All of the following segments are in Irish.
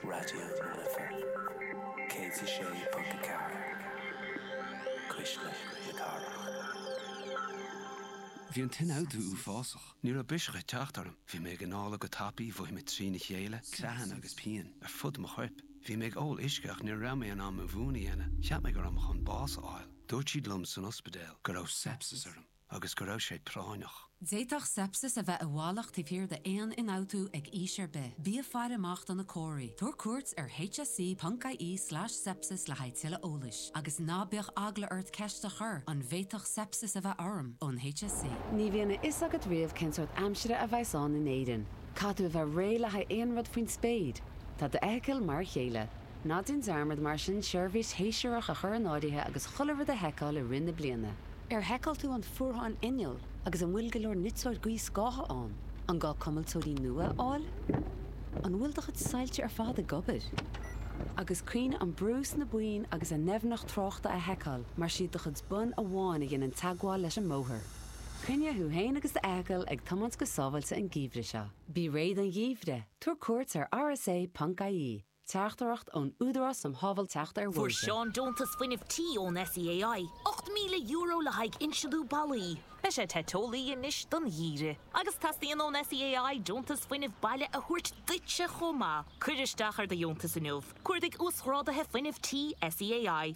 Raidió na Life 106.4, cuisle na cathrach. Bhí an t-ionfhabhtú uafásach. Ní raibh biseach ag teacht orm. Bhí mé ag análadh go tapaidh, mhothaigh mé trína chéile, creathanna agus pian ar fud mo choirp. Bhí mé ag ól uisce ach ní raibh mé in ann mo mhún a dhéanamh. Cheap mé go raibh mé chun bás a fháil. Dúirt siad liom san ospidéal go raibh seipsis orm. agus go raibh sé práinneach. D'fhéadfadh seipsis a bheith i bhfolach taobh thiar d'aon ionfhabhtú ag aois ar bith. Bí ag faire amach do na comharthaí. Tabhair cuairt ar hse.ie slash sepsis le haghaidh tuilleadh eolais. Agus ná bíodh eagla ort ceist a chur, An bhféadfadh seipsis a bheith orm? ón hse. Ní bhíonn a fhios agat riamh cén sórt aimsire a bheas ann in Éirinn. Caithfidh tú a bheith réidh le haghaidh aon rud faoin spéir. Tá d'fheithicil mar a chéile. Ná déan dearmad mar sin seirbhís shéasúrach a chur in áirithe agus chuile rud a sheiceáil i rith na bliana. Ar sheiceáil tú an fuarthán innill agus an bhfuil go leor niteoir gaothscátha ann? An gá cuimilteoirí nua a fháil? An bhfuil do chuid soilse ar fad ag obair? Agus cuimhnigh an brú sna boinn agus a ndoimhneacht tráchta a sheiceáil mar is iad do chuid bonn amháin a dhéanann teagmháil leis an mbóthar. Coinnigh thú féin agus do fheithicil ag tiomáint go sábháilte an geimhreadh seo. Bí réidh don gheimhreadh, tabhair cuairt ar rsa.ie. Teachtaireacht ón Údarás um Shábháilteacht ar Bhóithre. Fuair Seán deontas fuinnimh tí ón SEAI, €8,000 le haghaidh insliú ballaí. Beidh sé te teolaí anois don gheimhreadh. Agus teastaíonn ón SEAI deontas fuinnimh baile a thabhairt duitse chomh maith. Cuir isteach ar do dheontas inniu. Cuardaigh Uasghráduithe Fuinnimh Tí SEAI.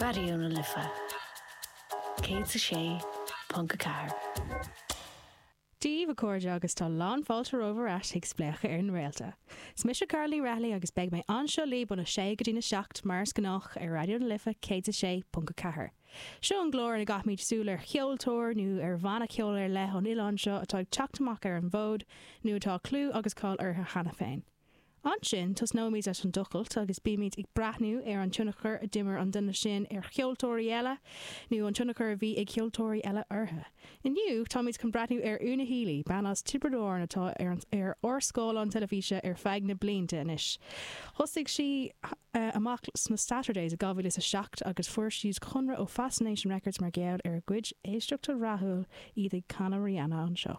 Raidió na Life 106.4. Dia daoibh a chairde agus tá lánfháilte romhaibh ar ais chuig Spléachadh ar na Réalta. 'S mise Carl Lee Rathallaigh agus beidh mé anseo libh óna sé go dtí na seacht mar is gnách ar Raidió na Life 106.4. Seo an gclár ina gcaithfimid súil ar cheoltóir nó ar bhanna ceoil ar leith ón oileán seo atá ag teacht amach ar an bhfód nó atá clú agus cáil orthu cheana féin. Ansin, tosnóimid leis an dtochailt agus beimid ag breathnú ar an tionchar a d'imir an duine sin ar cheoltóirí eile, nó an tionchar a bhí ag ceoltóirí eile orthu. Inniu, táimid chun breathnú ar Una Healy, bean as Tiobraid Árann atá ar ár scáileáin teilifíse ar feadh na blianta anois. Thosaigh sí amach sna Saturdays i 2007 agus fuair siad conradh ó Fascination Records mar gheall ar a gcuid éisteachta rathúil, iad ag canadh Rihanna anseo.